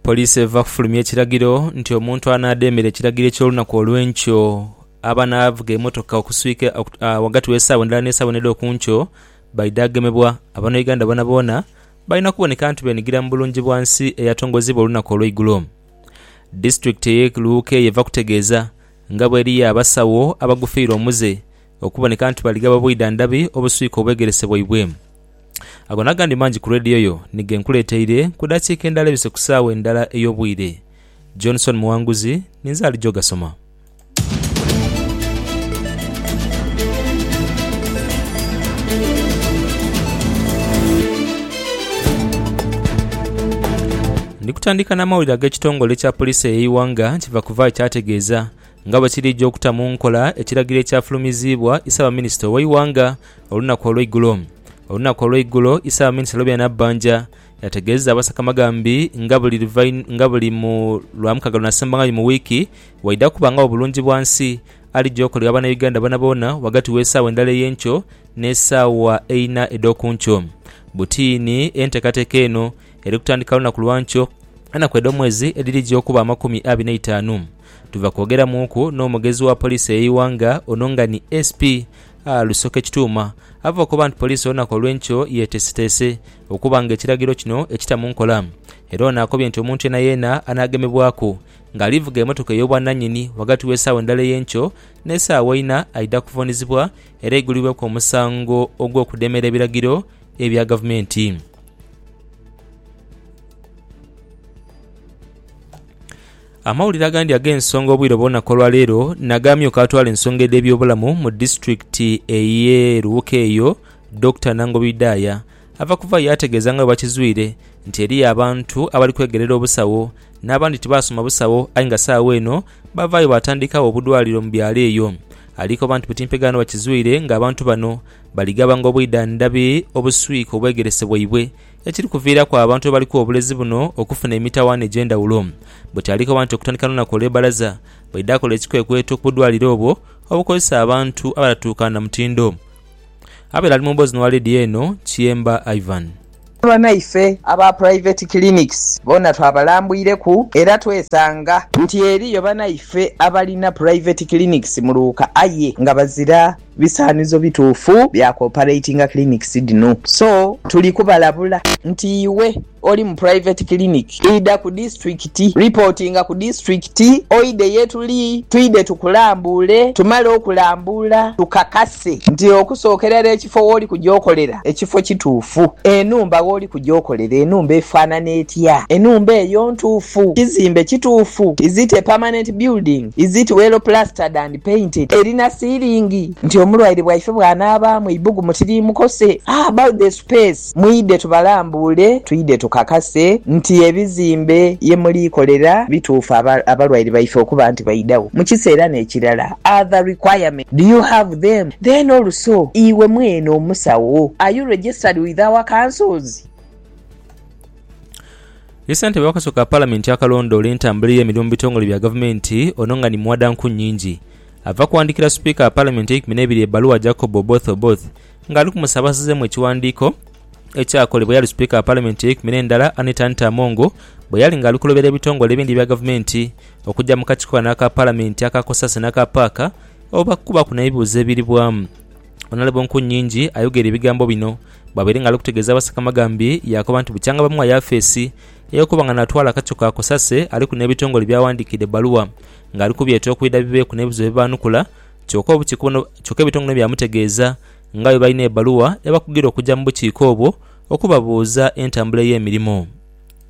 Poliisi eva kufulumya ekiragiro nti omuntu anaademera ekiragiro eky'olunaku olw'enkyo aba n'avuga emotoka okuswika ghagati w'esaawa endala n'esaawa endala edh'okunkyo baidha gemebwa. Abanouganda boonaboona balina kuboneka nti benigira mu Bulungibwansi eyatongozebwa olunaku olw'eigulo. Disitulikiti ey'e Luuka eyo eva kutegeeza nga bw'eriyo abasawo abagufiirwa omuze okuboneka nti bali ghaba bwidha ndhabi obuswika obwegerese bwaibwe. Ago n'agandi mangi ku leediyo yo ni ge nkuleeteire ku dakiika endala ebise ku saagha endala ey'obwire. Johnson Muwanguzi ninze alija ogasoma. Ndi kutandika n'amawulire ag'ekitongole kya poliisi ey'eighanga nti Vakuvai kyategeeza. Nga bwe kiri ejo okuta mu nkola ekiragiro ekyafulumiziibwa Isaabaminista ow'eighanga olunaku olweigulo, olunaku olweigulo Isaabaminista Lobia Nabbanja yategeeza abasakamagambi nga buli nga buli mu Lwamukaaga lunaasembangagho mu wiiki waidha kubangagho bulungi bwa nsi alija okolera Banauganda boonaboona ghagati w'esaawa endala ey'enkyo n'esaawa eina edh'okunkyo. Butiini enteekateeka eno eri kutandika lunaku lwankyo enaku edh'omwezi edhirija okuba amakumi abiri n'eitaanu. Tuva kwogeramuuku n'omugezi wa poliisi ey'eighanga ono nga ni SP, A Rusoke Kituuma ava okoba nti poliisi olunaku olw'enkyo yeteeseteese okuba nga ekiragiro kino ekita mu nkola era ono akobye nti omuntu yeenayeena anaagemebwaku nga ali vuga emotoka ey'obwananyini ghagati w'esaawa endala ey'enkyo n'esaawa ina aidha kuvuunizibwa era aigulibweku omusango ogw'okudemera ebiragiro ebya gavumenti. Amawulire agandi ag'ensonga obwire bw'olunaku olwa leero nag'amyuka atwala ensonga edh'ebyobulamu mu disitulikiti ey'e Luwuka eyo, Dokita Nangobi Idaya ava kuva yaategeeza nga bwe bakizwire nti eriyo abantu abali kwegerera obusawo n'abandi tibaasoma busawo aye nga saagho eno bavaayo baatandikagho obudwaliro mu byalo eyo. Alikoba nti butimpegaano bakizwire ng'abantu bano balighabanga obwidhandhabi obuswika obwegerese bwaibwe ekiri kuviiraku abantu abaliku obulezi buno okufuna emitawaana egy'endhawulo. Bwe kyalikoba nti okutandika lunaku olw'e bbalaza, baidha akola ekikwekweto ku budwaliro obwo obukozesa abantu abatatuuka na mutindo. Abaire ali mu mboozi n'owa leediyo eno, Kiyemba Ivan. Banaife aba Private Clinics boona twabalambwireku era twesanga nti eriyo banaife abalina Private Clinics mu Luuka aye nga bazira Bisaanizo bituufu bya ku operatinga clinics dhino. So tuli kubalabula nti iwe oli mu private clinic, idha ku disiturikiti, reportinga ku disiturikiti oidhe ye tuli twidhe tukulambuule. Tumale okulambuula tukakase nti okusookera ere ekifo w'oli kuja okolera ekifo kituufu. Enhumba w'oli kuja okolera enhumba efaanana etya? Enhumba eyo ntuufu? Kizimbe kituufu? Is it a permanent building? Is it well plastered and. painted erina siilingi nti omulwaire bwaife bwanaabaamu eibugumu tiriimukose a about the space mwidhe tubalambuule twidhe tukakase nti ebizimbe ye muliikolera bituufu aba abalwaire baife okuba nti baidhagho mu kiseera n'ekirala are the requirements do you have them then also iwe mwene omusawo are you registered with our councils? Ye ssentebe w'akakiiko ka Palamenti akalondoola entambula ey'emirimu mu bitongole bya Gavumenti, ono nga ni muwada nku nyingi, ava kuwandiikira Sipiika wa Palamenti eikumi n'ebiri ebbaluwa Jacob Oboth Oboth nga ali kumusaba asazeemu ekiwandiiko ekyakolebwa eyali Sipiika wa Palamenti eyeikumi n'endala Anita Anita Among bwe yali ng'ali kulobera ebitongole ebindi ebya Gavumenti okujja mu kakiiko kano aka Palamenti aka Cosase n'aka Paaka okubakubaku n'ebibuuzo ebiribwamu. Onalaba enku nyingi ayogera ebigambo bino. Bwabaire nga ali kutegeeza Abasaka Amagambi, yaakoba nti bukyanga bamugha Yafeesi ey'okuba nga naatwala akaco ka Kosase aliku n'ebitongole by'awandiikidde ebbaluwa ng'ali kubyeta okwidha bibeeku n'ebizibu bye baanukula. Kyoka obukiiko buno kyoka ebitongole bino byamutegeeza nga bwe balina ebbaluwa ebakugira okugya mu bukiiko obwo okubabuuza entambula ey'emirimo.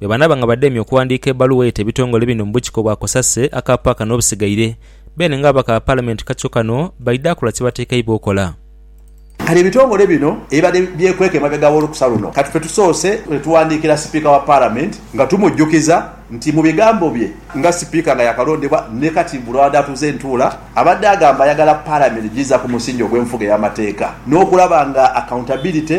Bwe banaaba nga bademye okuwandiika ebbaluwa eita ebitongole bino mu bukiiko bwa Kosase aka paaka n'obusigaire, beene ng'ababaka ba Palamenti kacyo kano baidha kola kye batekeibwa okola. Kale ebitongole bino ebibadde byekweka emabega w'olukusa luno kati ffe tusoose ne tuwandiikira Sipiika wa Palamenti nga tumujjukiza nti mu bigambo bye nga Sipiika nga yaakalondebwa ni kati mbu lw'abadde atuuza entuula abadde agamba ayagala Palamenti giza ku musingi ogw'enfuga ey'amateeka n'okulaba nga accountability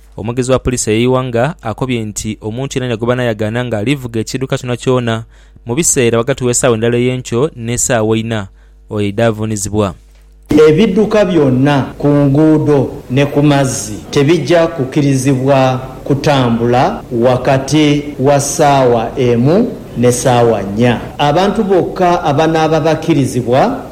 Omwogezi wa Poliisi eyo Iwanga akobye nti omuntu yenayena gwe banayagaana nga alivuga ekiiduka kyonakyona mu biseera ghagati w'esaawa endala ey'enkyo n'esaawa eina, oyo aidha avuunizibwa. Ebidhuka byona ku nguudo ne ku mazzi tebija kukirizibwa kutambula wakati wa saawa emu ne saawa nnya. Abantu bokka abanaaba bakirizibwa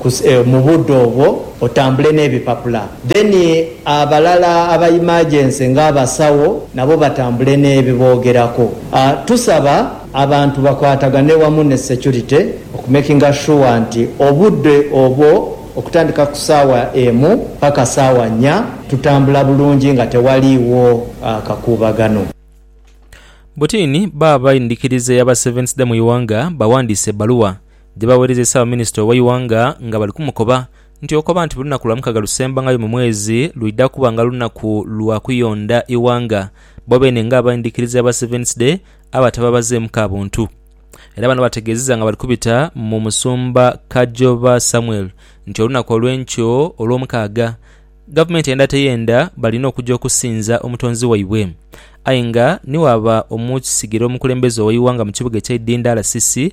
ku mu budo obwo otambule nebipapula then abalala aba emergency nga abasawo nabo batambule nebibogerako tusaba abantu bakwatagane wamu ne security okumakinga sure nti obude obwo okutandika ku sawa emu paka sawa nnya tutambula bulungi nga tewaliwo kakubagano. Butini, Bba bendhikiriza eya ba Seventhday mu ighanga bawandiise ebbaluwa. gye baaweereza Ssaabaminister owa Iwanga nga bali kumukoba nti okoba nti buli lunaku lwa mukaga lusembangayo mu mwezi lwidha kuba nga lunaku lwa kuyonda Iwanga bo beene nga abaindhikiriza ba Sevens Day abatababazeemu ka buntu era bano bategeezeza nga bali kubita mu Musumba Kajoba Samuel nti olunaku olw'enkyo olw'omukaaga Gavumenti eyenda teyenda balina okuja okusinza omutonzi waibwe aye nga ni waaba omukisigire omukulembeze owa Iwanga mu kibuga ekyeidhindha RCC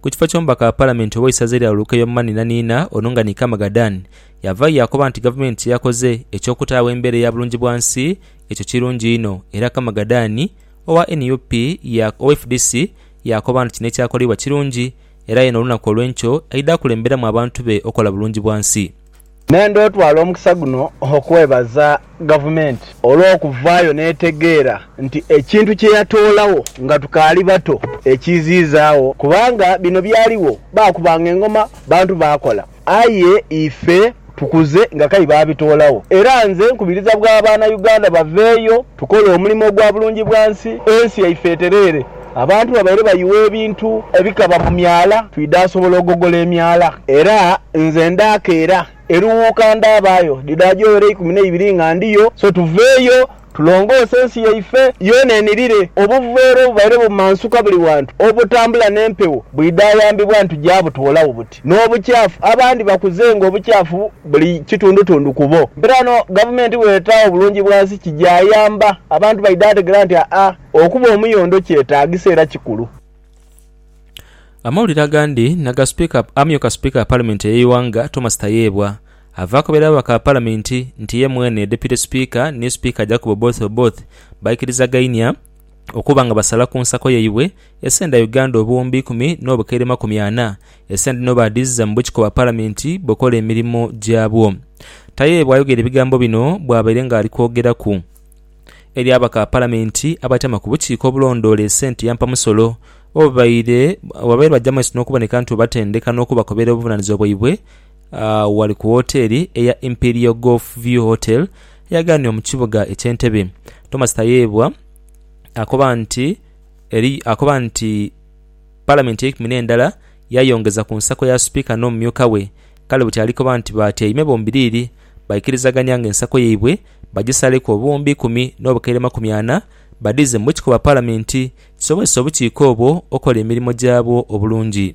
Ku kifo ky'omubaka wa Palamenti ow'eisaza erya Olukeyo Mani Naniina, Onungani Kamagadhan yavaayo yaakoba nti Gavumenti kye yakoze eky'okutaagho embeera eya bulungibwansi ekyo kirungi inho era Kamagadhan owa nup ya owa fdc yaakoba nti kino ekyakoleibwa kirungi era ye n'olunaku olw'enkyo aidha kulemberamu abantu be okola bulungibwansi. Nenda otwala omukisa guno okwebaza Gavumenti olw'okuvaayo n'etegeera nti ekintu kye yatoolagho nga tukaali bato ekiiziizaagho kubanga bino byaligho baakubanga engoma, bantu baakola aye ife tukuze nga k'aye baabitoolagho era nze nkubiriza bwa Banauganda baveeyo Tukole omulimo ogwa bulungi bwa nsi, ensi yaife etereere. Abantu babaire bayuwa ebintu ebikaba mu myala, twidha asobola ogogola emyala. Era nze ndaakeera eruwuuka ndaabaayo dhidhaajo were eikumi n'eibiri nga ndiyo. So tuveeyo tulongoose ensi yaife yoona enirire. Obuveera obubaire bumansuka buli wantu obutambula n'empewo bwidha ayambibwa nitugya butoolawo buti. N'obukyafu, abandi bakuzenga obukyafu buli kitundutundu kubo. Era no gavumenti bw'etaagho bulungi bwa nsi kigyayamba, abantu baidha ategera nti aa okuba omuyondo kyetaagisa era kikulu. Amawulire agandi naga Sipiika amyuka Sipiika wa Palamenti ey'eighanga Thomas Tayebwa ava akobera ababaka ba Palamenti nti ye mwene Deputy Sipiika ni Sipiika Jacob Oboth Oboth baikirizagainia okuba nga basala ku nsako yaibwe esenda Uganda obuwumbi ikumi n'obukaire makumi ana, esente dhino baadhiiziza mu bukiko bwa Palamenti bukola emirimu gyabwo. Tayebwa ayogera ebigambo bino bwabaire nga ali kwogeraku eri ababaka ba Palamenti abatyaama ku bukiiko obulondoola esente ya mpamusolo obubaire bajja mu maiso n'okuboneka nti bwebatendeka n'okubakobera obuvunanizibwa bwaibwe Agho ghali ku woteeli eya Imperial Golf View Hotel eyaghaniwa mu kibuga eky'Entebe. Thomas Tayebwa akoba nti eri akoba nti Palamenti eikumi n'endala yayongeza ku nsako ya Sipiika n'omumyuka we, kale buti ali koba nti batyaime bombiriri baikirizagania nga ensako yaibwe bagisaleku obuwumbi ikumi n'obukaire makumi ana badhiize mu bukikoba Palamenti kisobozese obukiiko obwo okola emirimo gyabwo obulungi.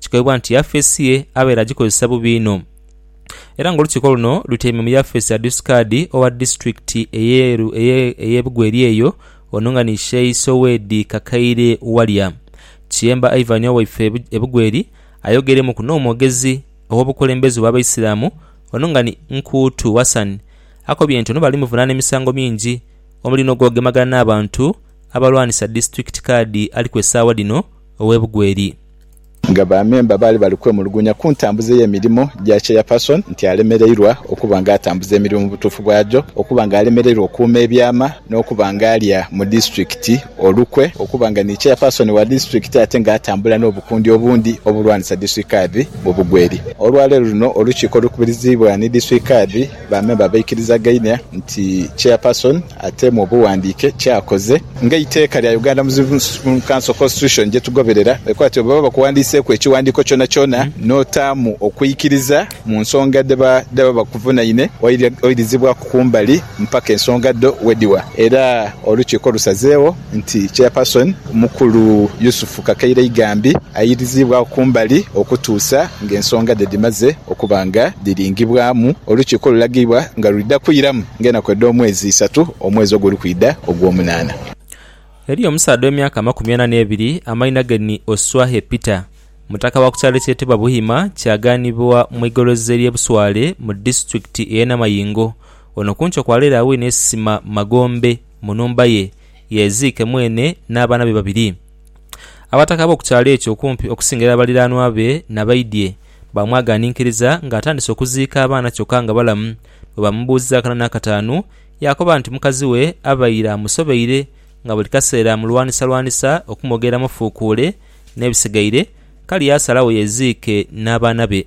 Kikoibwa nti yafeesi ye abaire agikozesa bubi inho era nga olukiiko luno lutyaime mu yafeesi ya Dusikaadi owa disitulikiti eye Bugweri eyo ono nga ni Sheyi Sowedi Kakaire Walya. Kiyemba Ivan owaife e Bugweri ayogeremuku n'omwogezi ow'obukulembeze obw'Abaisiramu ono nga ni Nkuutu Hassan akobye nti ono bali muvunaana emisango mingi omuli n'ogwogemagana n'abantu abalwanisa disitulikiti kaadi aliku esaawa dhino ow'e Bugweri. nga ba memba baali bali kwemulugunya ku ntambuza ey'emirimo gya Chairperson nti alemereirwa okuba nga atambuza emirimo mu butuufu bwagyo, okuba nga alemereirwa okuuma ebyama n'okuba nga alya mu disitulikiti olukwe okuba nga ni Chairperson wa disitulikiti ate nga atambula n'obukundi obundi obulwanisa disitulikadhi mu bugweri. Olwaleero luno olukiiko olukubiriziibwa ni disitulikadhi, Ba memba baikirizagaine nti Chairperson ateemu obughandiike kyakoze nga eiteeka lya Uganda Muslim Council Constitution gyetugoberera ekoba nti bwebaba bakuwandiiseeku ekighandiiko kyonakyona n'otaamu okwikiriza mu nsonga dhebaba bakuvunaine oirizibwaku kumbali mpaka ensonga dho wedhiwa era olukiiko lusazeegho nti Chairperson Mukulu Yusuf Kakaire-Igambi airiziibwagho kumbali okutuusa ng'ensonga dhe dhimaze okuba nga dhiringibwamu olukiiko olulagibwa nga lwidha kwiramu ng'enaku edh'omwezi isatu omwezi oguli kwidha ogwomunaana. Eriyo omusaadha w'emyaka amakumi ana n'ebiri amaina ge ni Oswahe Peter, mutaka wa ku kyalo ekyetebwa Buhima kyaganibwa mu igoloza ery'e Buswale mu disitulikiti ey'e Namayingo. Ono ku nkyo kwa leero awine esisima magombe. mu nhumba ye, yeeziike mwene n'abaana be babiri. Abataka ab'oku kyalo ekyo okumpi okusinga era baliraanwa be na baidhie baamwagaaninkiriza ng'atandise okuziika abaana kyokka nga balamu. Bwe baamubuuza akana n'akataanu, yaakoba nti mukazi we abaire amusobeire nga buli kaseera amulwanisalwanisa okumwogereramu fuukuule n'ebisigaire, kale yaasalawo yeeziike n'abaana be.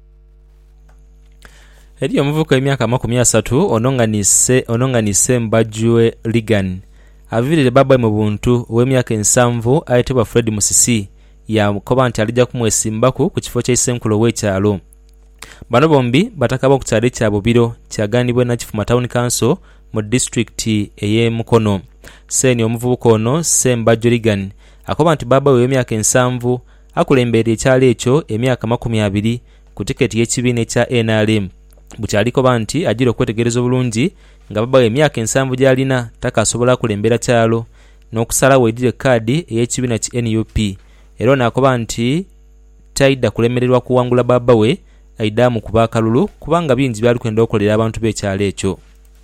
Eriyo omuvubuka ow'emyaka amakumi asatu ononganise ononganise mbajue Reagan aviirire bbaabbawe mu buntu ow'emyaka ensanvu ayetebwa Fred Musisi yaakoba nti alija kumwesimbaku ku kifo kya Isenkulu ow'ekyalo. Bano bombi bataka b'oku kyalo ekya Bubiro kyaganibwa Nakifuma Town Council mu disitulikiti ey'e Mukono. Seeni omuvubuka ono Ssembajwe Reagan akoba nti bbaabbawe ow'emyaka ensanvu Akulembeire ekyalo ekyo emyaka amakumi abiri ku tiketi y'ekibiina ekya nrm bukyali koba nti ajira okwetegereza obulungi nga babawo emyaka ensanvu gyalina takasobola kulembera kyalo n'okusalagho aidire kaadi ey'ekibiina ki nup era ono akoba nti taidha kulemererwa kuwangula babawe aidaamu kuba akalulu kubanga bingi byalikwenda okolera abantu b'ekyalo ekyo.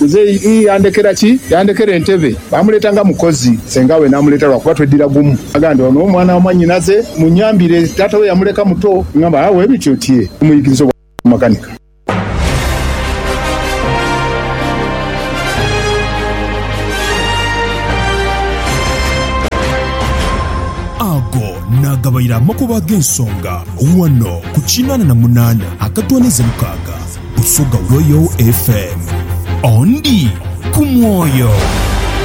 Nze ii, yandekera ki? Yandekera entebe. Baamuleeta nga mukozi, sengaawe n'amuleeta lwa kuba tweddira gumu. Agamba nti, Ono mwana wa mwannyinaze, munnyambire. Taata we yamuleka muto. Ng'amba, Aa, bwe bityo? Tyee, tumuyigirize obwamakanika. Ago naagabaire amakubo ag'ensonga ghano ku kinaana na munaana akatwaniza mukaaga. Busoga Royal FM. Ondi ku mwoyo.